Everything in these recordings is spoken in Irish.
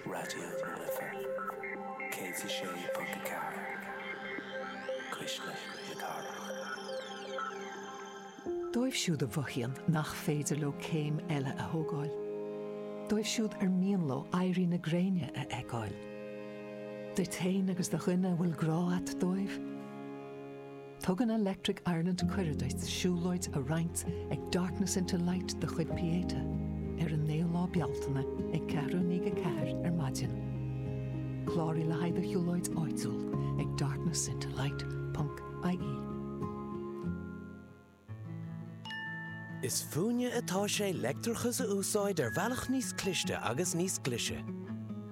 Raidió na Life 106.4, Cuisle na Cathrach. Dóibh siúd a mhothaíonn nach féidir leo céim eile a thógáil, dóibh siúd ar mian leo éirí na gréine a fheiceáil, duit féin agus do dhuine a bhfuil grá a't dóibh, Tugann Electric Ireland cuireadh duit siúlóid a roinnt ag Darkness into Light de chuid Pieta ar an 9ú lá Bealtaine ag ceathrú i ndiaidh a ceathair ar maidin. Cláraigh le haghaidh do shiúlóid áitiúil ag darknessintolight.ie. Is fúinne atá sé leictreachas a úsáid ar bhealach níos cliste agus níos glise.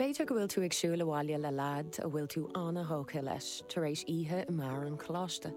B'fhéidir go bhfuil tú ag siúl abhaile le leaid a bhfuil tú an-thógtha leis tar éis oíche i mbeár an choláiste.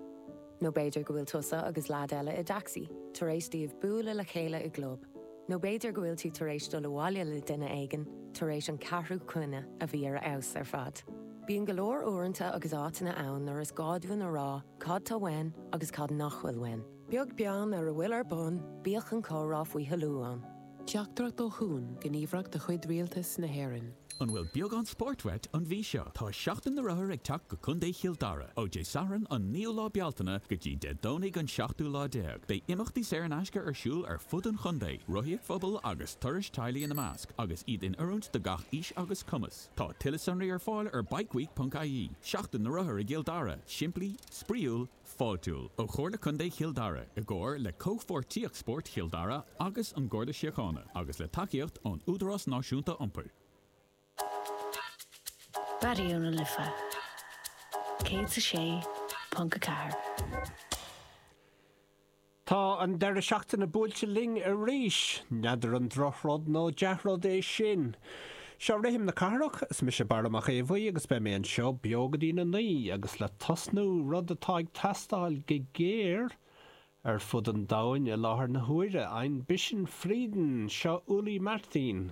Nó b'fhéidir go bhfuil tusa agus leaid eile i dtacsaí tar éis daoibh bualadh le chéile i gclub. Nó b'fhéidir go bhfuil tú tar éis dul abhaile le duine éigin tar éis an ceathrú coinne a bhí ar a fheabhas ar fad. Bíonn go leor uaireanta agus áiteanna ann nuair is gá dúinn a rá cad tá uainn agus cad nach bhfuil uainn. Beag beann ar a bhfuil ar bun, bíodh an comhrá faoi thoiliú ann. Teachtaireacht ó Chuan, gníomhaireacht de chuid Rialtas na hÉireann. An bhfuil beagán spóirt uait an mhí seo? Tá Seachtain na Rothar ag teacht go Contae Chill Dara! Ó Dé Sathairn an 9ú lá Bealtaine go dtí Dé Domhnaigh an 7ú lá déag, beidh imeachtaí saor in aisce ar siúl ar fud an chontae, rothaíocht phobail agus turais teaghlaigh ina measc, agus iad in oiriúint do gach aois agus cumas. Tá tuilleadh sonraí ar fáil ar bikeweek.ie. Seachtain na Rothar i gCill Dara, simplí, spraíúil, Fáiltiúil ó Chomhairle Contae Chill Dara i gcomhar le Comhpháirtíocht Spóirt Chill Dara agus an Garda Síochána agus le tacaíocht ón Údarás Náisiúnta Iompair. Raidió na Life 106.4. Tá an deireadh seachtaine buailte linn arís. N'fheadar an drochrud nó dea-rud é sin. Seo Rithim na Cathrach, is mise Barra Mac Aodha Bhuí agus beidh mé anseo beo go dtína naoi agus le tosnú, rud atá ag teastáil go géar ar fud an domhain i láthair na huaire, ein bisschen Frieden, seo Ulli Martin.